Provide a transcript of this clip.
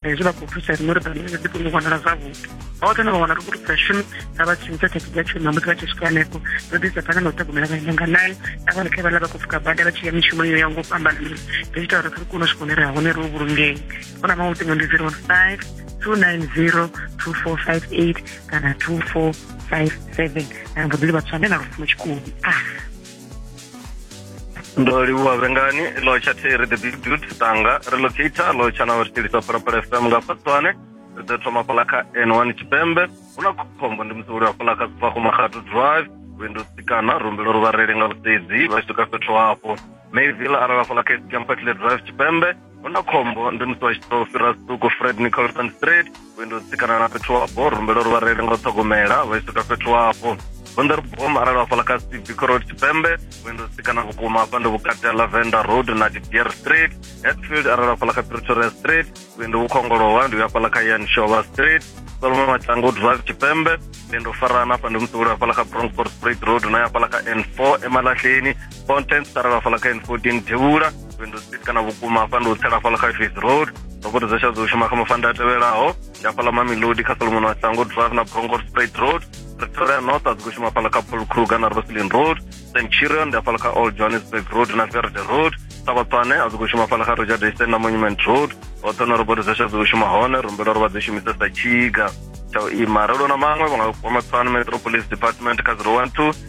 hezwi vha khou thusa riṋe uri bammbiri dzi kone u vhonala zwavhuḓi hoṱhe na vha wana ri khou thusa shumi na vha tshintsha thekhi dza tshuma musi vha tshi swika hanefho ro ḓisa phanḓa na u ṱhogomela vhaenda nga nayo na vhone kha vhala vha khou pfuka bada vha tshi ya mishumo yo ya ngo fhambanana ri ita uri ri kone u swika hune ri ha hone ro vhulungei u na maṅwe luṱingo ndi zero one five two nine zero two four five eight kana two four five seven na mboḓi livha tswane na lufuno tshikoni ah ndo livhuwa vhengani lotsha theri the big dude tanga ri locator lotsha na ri tshilisa phalaphala fm nga fatswane ri ḓo thoma fhala kha n1 tshipembe hu na khombo ndi musi uliwa fhala kha sifakumahatu drive window sikana rumbelo ri vhareli nga vhusedzi vha tshi swika fhethu hafho mayville arala fhala kha campertle drive tshipembe hu na khombo ndi musi wa tshi tou fhira suku fred nicholson street vhuendi u tsikana na fhethu wapo rumbela uri vhareili nga u ṱhogomela vha tshi swika fhethu wapo vunḓa ri bom arali hafhaḽa kha cbc road tshipembe vhuendi u tsikana vhukuma hafha ndi vhukati ha lavender road na didier street hetfield arali hafhaḽa kha pretoria street vhuendi vhu khongolowa ndi hafhaḽa kha yan shova street solomon matshango drive tshipembe vhuendi u farana hafha ndi musi uli hafhaḽa kha bronford street road na hafhaḽa kha n four emalahleni content sara lafhala kha n 14 thevhula lwendo street kana vhukuma hafha ndi u tsela hafhala kha fis road ndo vhudza zwa dzo shuma kha mafanda a tevhelaho ndi hafhala mamelodi kha solomon wa sango drive na bronco straight road pretoria north a dzi khou shuma hafhala kha paul kruger na roslin road st chirion ndi hafhala kha old johannesburg road na verde road sabatswane a dzi khou shuma hafhala kha roger dayston na monument road hoṱhe na roboto zwa dzi khou shuma hone rumbela uri vha dzi shumise sa tshiga tsha u ima ralo na maṅwe vha nga kwama tswana metropolis department kha 012